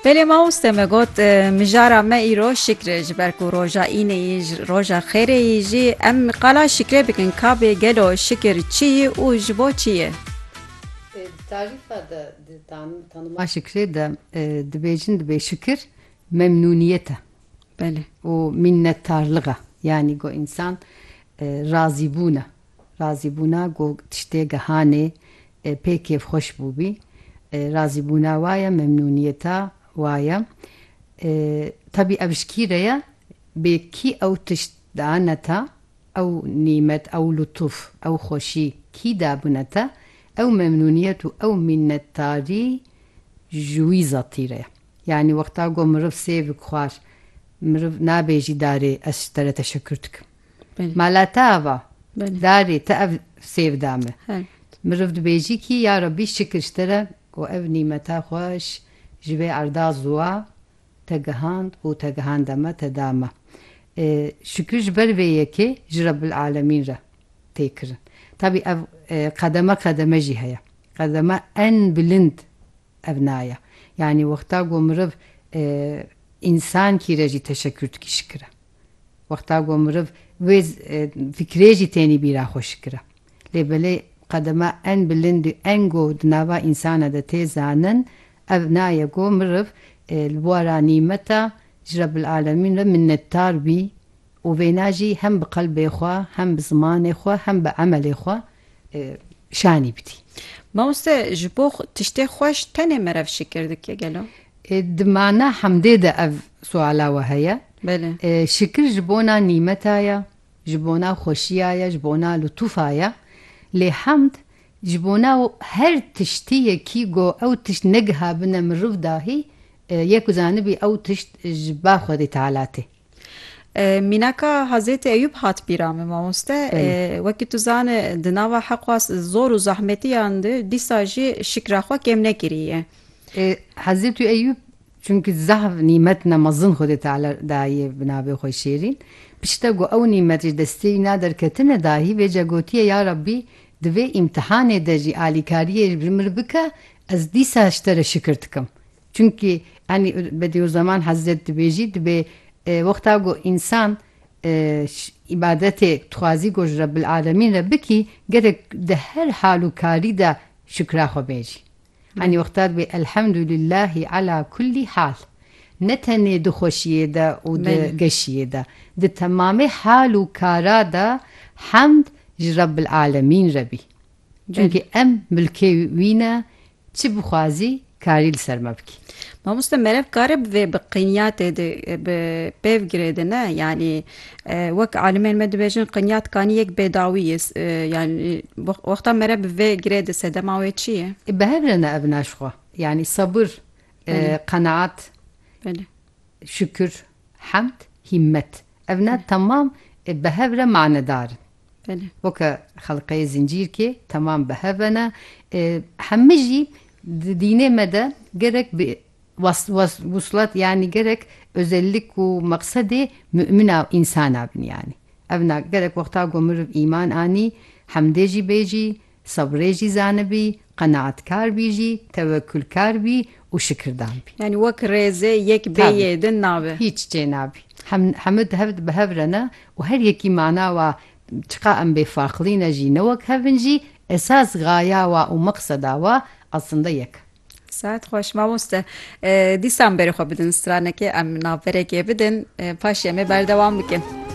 Belê mamoste me got mijara me îro şikr e ji ber ku roja înê yî ji roja xêrê yî jî em qala şikrê bikin kabê gelo şikir çi yî û ji bo çi yê. Di tarîfa de di tanima şikrê de dibêjin dibê şikir memnûniyet e û mînnetarlig e yanî ku însan razîbûn e. Razîbûna ku tiştê gihanê pê kêfxweş bûbî, razîbûna wa ye, memnûniyeta wa ye. Tebî ev ji kî re ye? Bê kî ew tişt dane te, ew nîmet, ew lutûf, ew xweşî kî dabûne te, ew memnûniyet û ew mînnetdarî ji wî zetî re ye. Yanî wexta ku miriv sêv û xwar, miriv nabêjî darê ez ji te re teşekkür dikim. Mala te ava. Darê te ev sêv da min. Mirov dibêjî kî ya Rabbî şikir ji te re ku ev nîmeta xweş ji vê erda ziwa te gihand û te gihanda me te da me. Şikir ji ber vê yekê ji Rebbil Alemîn re tê kirin. Tabî ev qedeme qedeme jî heye. Qedeme en bilind Ev naya. Yanî wexta ku miriv însan kî re jî teşekür dikî şikir e. Wexta ku miriv wê fikrê jî tênî bîra xwe şikir e. Lê belê qedema en bilind û en ku di nava însanan de tê zanin ev naya ku miriv li bûara nîmeta ji Rebil Alemîn re minnetdar bî Û vêna jî hem bi qelbê xwe, hem bi zimanê xwe, hem bi emelê xwe şanî bidî. Mamoste ji bo tiştê xweş tenê merev şikir dike gelo? Di mana hemdê de ev suala we heye. Belê. Şikir ji bona nîmeta ye, ji bona xweşiya ye, ji bona lutûfa ye. Lê hemd ji bona her tiştî ye kî go ew tişt negihabine miriv dahî ye ku zanibî ew tişt ji ba Xwedê Teala tê. Mînaka Hazêtî Eyûb hat bîra min mamoste. Wekî tu zane di nava heqwa zor û zahmetiyan de dîsa jî şikra xwe kêm nekiriye. Hazêtî Eyûb çunkî zahf nîmet na mezin Xwedê Teala daye bi navê xwe şêrîn. Pişta ku ew nîmet ji destê wî na derketine dahî vêca gotiye ya Rabbî di vê îmtihanê de jî alîkariyê ji min bike ez dîsa ji te re şikir dikim. Çimkî enî Bedîûzzeman Hezret dibêjî dibê wexta ku însan îbadetê dixwazî ku ji Rebbilalemîn re bikî gerek di her hal û karî de şikra xwe bêjî. Enî wexta dibê Elhemdulîllahî ala kullî hal. Ne tenê di xweşiyê de û di geşiyê de. Di temamê hal û kara de hemd ji Rebbilalemîn re bî. Çunkî em milkê wî ne, çi bixwazî karî li ser me bikî. Mamoste merev kare bi vê bi qinyatê de bi pêv girê de ne yanî wek alimên me dibêjin qinyat kanî yek bêdawî ye yanî wexta merev bi vê girê de sedema wê çi ye? Bi hev re ne ev naşixwe yanî sebir, qenaat. Şükür, hemd, hîmmet. Ev ne temam ê bi hev re manedar in. Belê. Weke xelqeyê zincîrkê temam bi hev ve ne. Hemû jî di dînê me de gerek bi wuslat yanî gerek özellik û meqsedê mumina însan a bin yanî. Ev ne gerek wexta ku meriv îman anî hemdê jî bêjî, Sebrê jî zanibî, qenaetkar bî jî, tewekûlkar bî û şikirdan bî. Yanî wek rêzê yek bê yê din nabe. Hîç çê nabî. Hem hemû di hev de bi hev re ne û her yekî mana wa çiqa em bê farqlî ne jî ne wek hev in jî esas gaya wa û meqseda wa aslinde yek e. Saet xweş mamoste. Dîsan berê xwe bidin stranekê em navberekê bidin paşê em ê berdewam bikin.